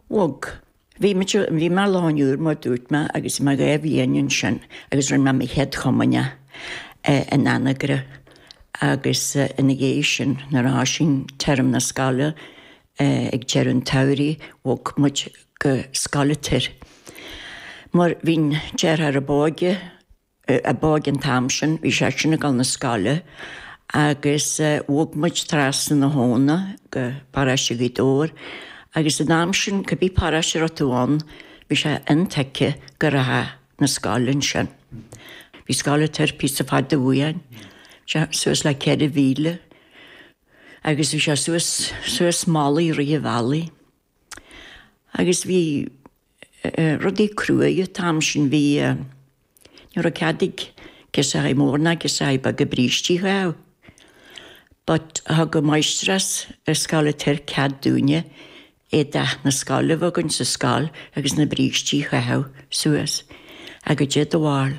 Bhog. Bhí muid, bhí mé i Loch an Iúir mar dúirt mé agus mé dhá bhliain ansin agus rinne mé mo chéad Chomaoine in Anagaire agus ina dhiaidh sin nuair a thoisigh téarma na scoile ag deireadh an tsamhraidh bhog muid go Scoil an Toir. Mar bhí an deartháir ab óige, a bhí againn an t-am sin, bhí sé sin ag dul na scoile agus bhog muid trasna na habhna go Paráiste Ghaoth Dobhair agus an t-am sin cibé paráiste a raibh tú ann bhí sé intuigthe go rachfá na scoile ansin. Bhí Scoil an Toir píosa fada uainn, bhí sé suas le ceithre mhíle agus bhí sé suas suas malaí rith an bhealaigh. Agus bhí rudaí cruaidh an t-am sin, bhí, ní raibh cead ag girseachaí móra ná girseachaí beaga brístí a chaitheamh. But thug an máistreás ar Scoil an Toir cead dúinne éideadh na scoile a bheith againn sa scoil agus na brístí a chaitheamh suas. Ach goidé do bharúil,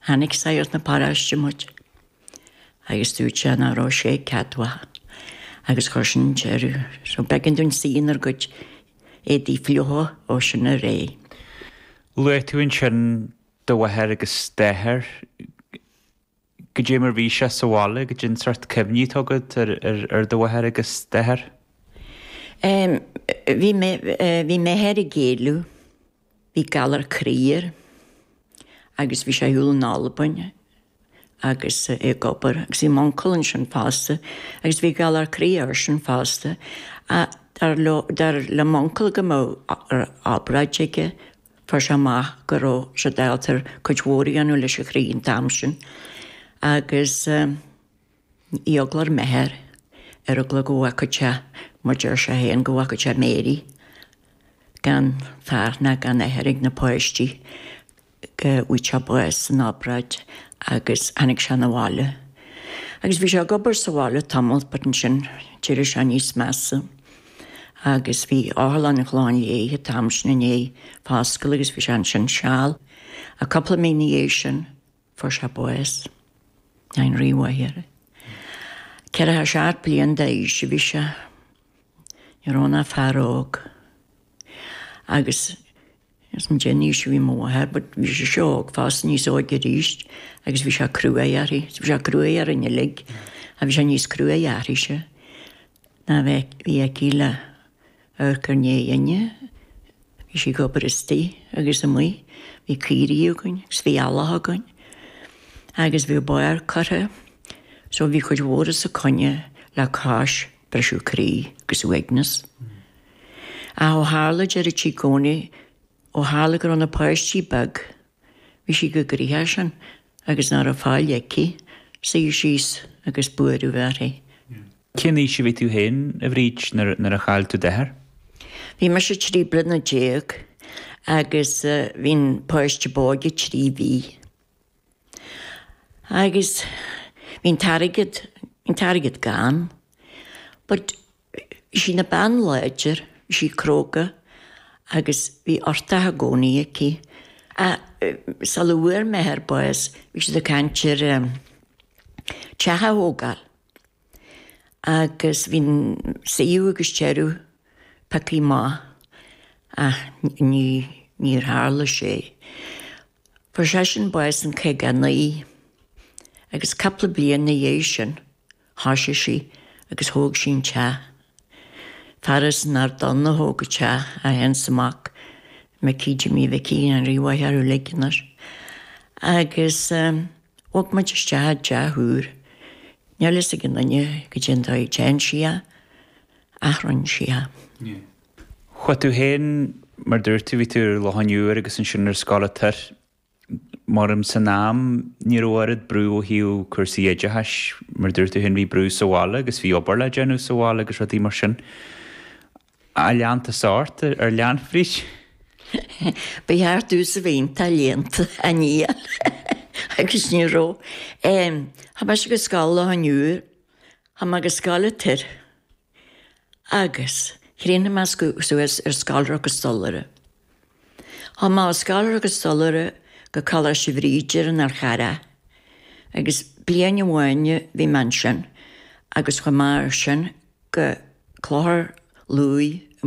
chonaic sagart na paráiste muid. Agus dúirt sé nach raibh sé ceadmhach agus chuir sin an deireadh air. So b'eigean dúinn suí inár gcuid éadaí fliucha ó sin ar aghaidh. Luaigh tú ansin do mháthair agus d'athair. Goidé mar bhí sé sa bhaile, goidé an sórt cuimhní atá agat ar do mháthair agus d'athair? Bhí m'athair ag éileamh. Bhí galar croí air agus bhí sé ar shiúl in Albain agus é ag obair agus bhí m'uncail ansin fosta agus bhí galar croí airsean fosta. Dar leo, dar le m'uncail go mbeadh obráid aige, fuair sé amach go raibh siad ábalta cuid mhór a dhéanamh leis an chroí an t-am sin agus. Eagla ar m'athair, ar eagla go bhfágfadh sé, mar dúirt sé féin go bhfágfadh sé Mary gan fear ná gan athair ag na páistí go bhfaigheadh sé bás san obráid agus tháinig sé na bhaile. Agus bhí sé ag obair sa bhaile tamall, but ansin d'éirigh sé níos measa agus bhí Otharlann an Chlocháin Léith an t-am sin i ndiaidh foscailt agus bhí sé ansin seal. A cupla mí ina dhiaidh sin Fuair sé bás ann, ní raibh m'athair ach 47 bliain d'aois a bhí sé. Ní raibh ann ach fear óg agus níl a fhios agam goidé an aois a bhí mo mháthair but bhí sise óg fosta, níos óige arís agus bhí sé cruaidh uirthi. Bhí sé cruaidh orainn uilig ach bhí sé níos cruaidhe uirthise nó bhí aici le Amharc ár ndiaidh inne. Bhí sí ag obair istoigh agus amuigh. Bhí caoirigh againn agus bhí eallach againn agus bhí barr curtha so bhí cuid mhór os a coinne le cois briseadh croí agus uaigneas. Ach ó tharla deireadh sí gcónaí ó tharla go raibh na páistí beag Bhí sí chomh gnoitheach sin agus nach raibh faill aici suí síos agus buaireamh a bheith uirthi. Cén aois a bhí tú féin, a Bhríd, nuair a chaill tú d'athair? Bhí mise trí bliana déag agus bhí an páiste b'óige trí mhí. Agus bhí an t-airgead, bhí an t-airgead gann. But Bhí sí ina bean láidir, bhí sí cróga agus bhí uchtach i gcónaí aici. Ach sula bhfuair m'athair bás bhí siad ag caint ar teach a thógáil agus bhí an suíomh agus deireadh pioctha amach ach ní níor tharla sé. Fuair seisean bás in caoga a naoi agus cupla bliain ina dhiaidh sin Thoisigh sí agus thóg sí an teach. Fear as an Ard Donn a thóg an teach, é fhéin is a mhac, Micí Jimí Mhicí go ndéana a mhaith orthu uilig inniu. Agus bhog muid isteach i dteach úr. Níl a fhios ag aon duine goidé an dóigh a dtearn sí é ach rinn sí é. Chuaigh tú fhéin, mar dúirt tú, bhí tú ar Loch an Iúir agus ansin ar Scoil an Toir. Maram san am ní raibh oiread brú ó thaobh cúrsaí oideachais, mar a dúirt tú féin, bhí brú sa bhaile agus bhí obair le déanamh sa bhaile agus rudaí mar sin. Ach lean tusa ort ar léann, a Bhríd. Ba cheart domhsa a bheith iontach léannta, ach níl agus ní raibh. Chuaigh mise go scoil Loch an Iúir, chuaigh mé go scoil an Toir. Agus thrína meascadh suas ar scoláire agus stollaire, thiomáin scoláire agus stollaire go Coláiste Bhríde ar an Fhearchair agus bliain amháin bhí mé ansin agus chomh maith sin go Clochar Lúí i